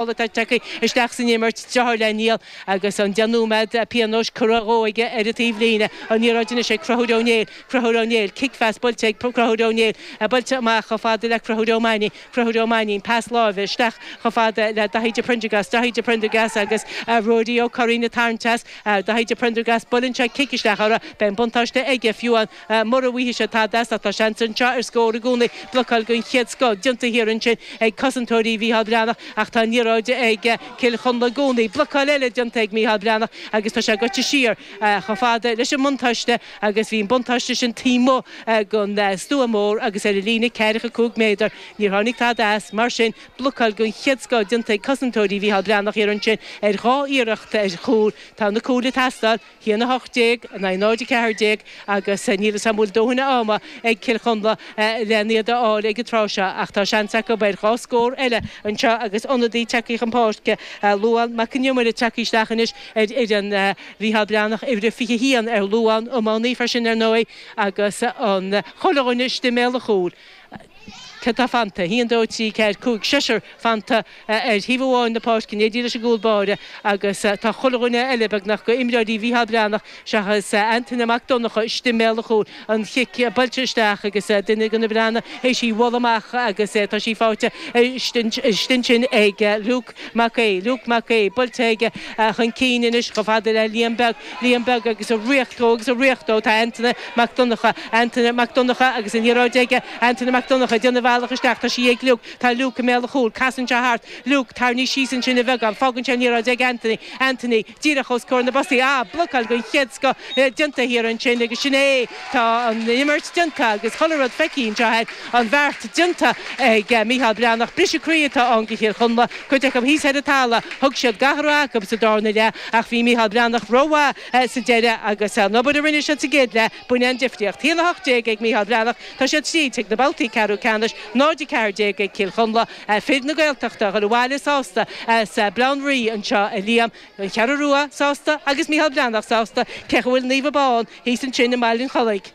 boladh tagtha isteach san imirt, deartháir le Niall agus an 10 nóiméad pionóis curtha dhó aige ar an taobhlíne. An liathróid anois ag Conchúr Ó Néill. Conchúr Ó Néill, cic phas buailte ag Conchúr Ó Néill. Buailte amach chomh fada le Conchúr Ó Mainín. Conchúr Ó Mainín, pas láimhe isteach chomh fada le Daithí de Priondargás. Daithí de Priondargás agus Ruairí Ó Curraoin ag tarraingt as. Daithí de Priondargás, buaileann sé cic isteach orthu. Beidh an buntáiste aige, fiú amháin. Mura bhfaighidh sé tada as, ach tá seans anseo ar scór i gcónaí. Blocáil den chéad scoth déanta thiar ansin ag cosantóirí Mhícheál Breathnach ach tá an liathróid ag Cill Chonla i gcónaí. Blocáil eile déanta ag Mícheál Breathnach agus tá sé gaibhte siar chomh fada leis an mbuntáiste agus bhí an buntáiste sin taobh amuigh den stua mór agus ar an líne ceathracha cúig méadar. Níor tháinig tada as, mar sin. Blocáil den chéad scoth déanta ag cosantóirí Mhícheál Breathnach thiar ansin ar dhá iarracht ar chúl. Tá na cúil ag teastáil. 1, 18 in aghaidh 0, 14 agus níl fhios a'm bhfuil dóthain ama ag Cill Chonla len iad a fháil ag an tráth seo ach tá seans acu ar dhá scór eile anseo agus ionadaí tagtha chun páirce, Luán Mac Con Iomaire tagtha isteach anois ar fhoireann Mhícheál Breathnach, uimhir a 21 ar Luán, iománaí freisin ar ndóigh agus chuile dhuine istigh i mbéal an chúil. Cé atá fanta, 1, 2, 3, 4, 5, seisear fanta ar thaobh amháin na páirce, in éindí leis an gcúl báire agus tá chuile dhuine eile beagnach go imreoirí Mhícheál Breathnach seachas Antaine Mac Donnacha istigh i mbéal an chúil. An chic buailte isteach agus duine de na Breathnaigh th'éis í bhualadh amach agus tá sí faighte istigh ansin ag Luke. Mac Aoidh, Luke Mac Aoidh, buailte aige chun cinn anois chomh fada le Liam Beag, Liam Beag agus ag ritheacht dó agus ag ritheacht dó tá Antaine Mac Donnacha, Antaine Mac Donnacha agus an liathróid aige, Antaine Mac Donnacha ag déanamh a bhealach isteach, tá sí ag Luke, tá Luke i mbéal an chúil, casann sé thart, Luke, tarraingíodh síos ansin é beagán, fágann sé an liathróid ag Antaine, Antaine. díreach os comhair na bpostaí ah blocáil den chéad scoth déanta thiar ansin agus sin é tá an imirt déanta agus chuile rud feicthe anseo tá an beart déanta ag Micheál Breathnach briseadh croí atá ann do Chill Chonla cuid acu thíos ar an talamh thug siad gach a raibh acu sa darna leath ach bhí Micheál Breathnach rómhaith sa deireadh agus an obair a rinne siad sa gcéad leath b'in an difríocht 1 18 ag Micheál Breathnach tá siad tríd chuig na babhtaí ceathrú ceannais 0 14 ag Cill Chonla. Fir na Gaeltachta ag dul abhaile sásta as Baile Átha an Rí anseo, a Liam. An Cheathrú Rua sásta agus Micheál Breathnach sásta. Féach an bhfuil Naomh Abán thíos ansin i mBaile an Chollaigh.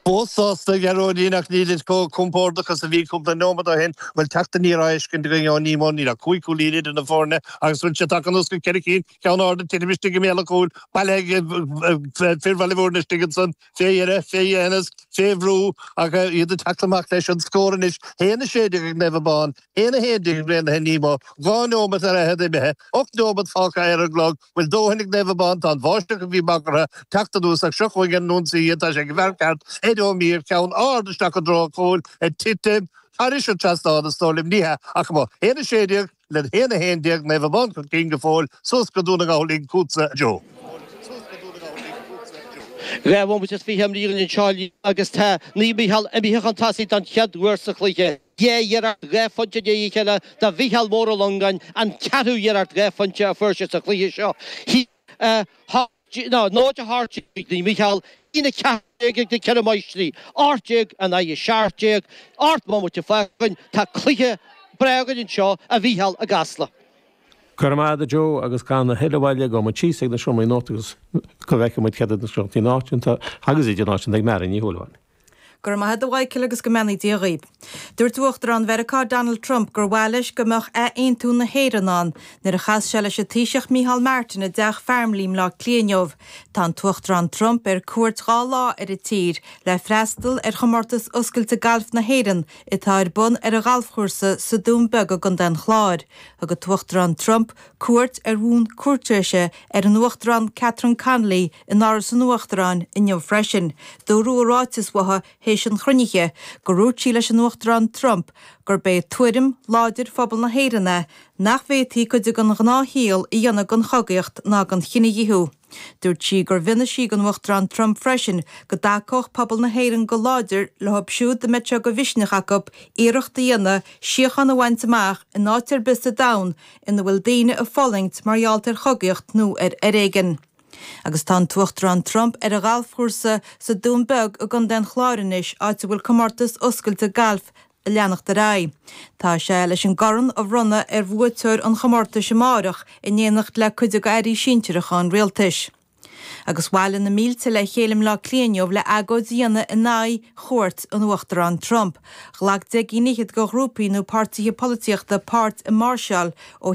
Fós sásta a Ghearóidín ach nílid chomh compordach is a bhí cúpla nóimeat ó shin. Bhuel teacht aniar á fheiscint againn ó Nemo. Níl ach cúig chúilín idir na foirne agus bhfuil sé tagtha anuas go ceithre cinn, ceann ard ag titim istigh i mbéal an chúil bailithe ag fir Bhaile Mhúirne istigh ansan, fé dheireadh, fé dhéthanas, fé bhrú ach iad ag teacht amach leis an scór anois, 1 16 ag Naomh Abán, 1 11 ag Raonaithe Nemo, dhá neomat ar fhichead imithe, ocht neomat fágtha ar an gclog, bhfuil dóthain ag Naomh Abán, tá an bháisteach a bhí bagartha ag teacht anuas ach seo chuig an ionsaí iad, tá sé ag an bhfear ceart Ed Ó Mír, ceann ard isteach i dtreo an chúil, ag titim thairis an trasnán, is dóigh liom, ní hea, ach amuigh, 1 16. le 1, 11, Naomh Abán chun cinn go fóill suas go Dún na nGall linn chugatsa a Joe. Dhá bhomaite is fiche a imríodh anseo agus tá Naomh Mícheál imithe chun tosaigh don chéad uair sa chluiche. Dhá iarracht dhá phointe i ndiaidh a chéile do Mhicheál Mór Ó Longáin an ceathrú iarracht dhá phointe a fuair sé sa chluiche seo. 0, 18 Naomh Mícheál 1, 14 ag na Ceithre Máistrí, 18 in aghaidh 17, ocht mbomaite fágtha Tá cluiche breá againn anseo a Mhícheál i gCasla. Go raibh maith agat a Joe agus gan a thuilleadh moille gabhfaidh muid síos ag an seomra nuachta agus go bhfeice muid céard iad na scéalta náisiúnta agus idirnáisiúnta ag Mary Ní Shúilleabháin. Go raibh maith agat a Mhichíl agus go mbeannaí Dia dhaoibh. Dúirt Uachtarán Mheiriceá Donald Trump gur mhaith leis go mbeadh athaontú na hÉireann ann. Nuair a chas sé leis an Taoiseach Micheál Martin i dTeach Farmleigh i mBleá Cliath inniu. Tá an tUachtarán Trump ar cuairt dhá lá ar an tír le freastal ar Chomórtas Oscailte Gailf na hÉireann atá ar bun ar a ghalfchúrsa sa Dún Beag i gContae an Chláir. Thug an tUachtarán Trump Cuairt ar bhonn cúirtéise ar an Uachtarán Catherine Connolly in Áras an Uachtaráin inniu freisin. Dúradh i ráiteas uathu théis an chruinnithe gur dhúirt sí leis an Uachtarán Trump gurb é tuairim láidir phobal na hÉireann é nach bhféadfaí cuid den ghnáthshaol a dhéanamh den chogaíocht ná den chinedhíothú. Dúirt sí gur mhínigh sí don Uachtarán Trump freisin go dtacódh pobal na hÉireann go láidir leo siúd a mbeadh sé de mhisneach acu iarracht a dhéanamh síocháin a bhaint amach in áit ar bith sa domhan ina bhfuil daoine ag fulaingt mar gheall ar chogaíocht nó ar fhoréigean. Agus tá an tUachtarán Trump ar a ghalfchúrsa sa Dún Beag i gContae an Chláir anois, áit a bhfuil comórtas oscailte gailf na. ag leanacht ar aghaidh. Tá sé leis an gcorn a bhronnadh ar bhuaiteoir an chomórtais amáireach in éineacht le cuid de Airí sinsearacha an Rialtais. Agus bhailigh na mílte le chéile i mBleá Cliath inniu le agóid a dhéanamh in aghaidh chuairt an Uachtarán Trump. Ghlac deich gcinn fhichead de ghrúpaí nó páirtíthe polaitíochta páirt i máirseáil ó